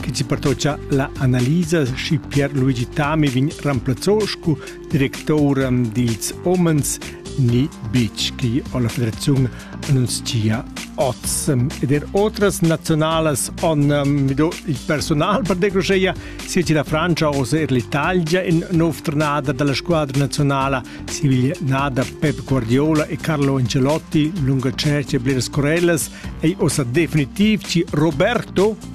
che ci pertocha la analisa schi Pier Luigi Tami vegn remplazzò scu directoura dils homens ni beach che la federazione annunzia oz ed er otras nazionalas on um, mido il personal per decroscheia sia da Francia o er l'Italia in nov tornada dalla squadra nazionala Siviglia Nada Pep Guardiola e Carlo Ancelotti lunga cerchia bleras Corellas ei osa definitiv ci Roberto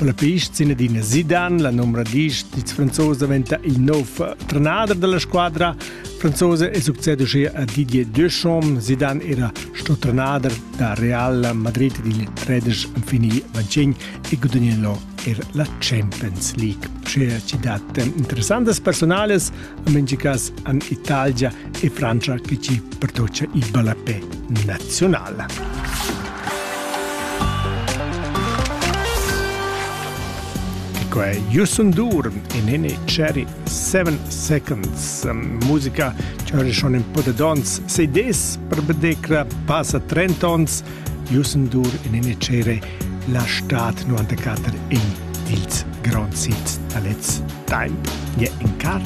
La pista sin adina Zidane, la numra 10 dils franzosi daventa il nov trenader dalla squadra franzosa e succede uschia a Didier Deschamps. Zidane era sto trenader da Real Madrid dil 13 fini vaccin e gudagnò er la Champions League. Sche ci dat interessantes personales En mengli cas an Italgia e Frangia che ci pertocia il ballapé nazionale. Quei Jussun Durm e Nene Cherry Seven Seconds musica c'è schon un po' di d'ons sei des per bedecra passa 30 ons Jussun Dur e Nene Cherry la stat 94 in ils grands hits da lez temp je in car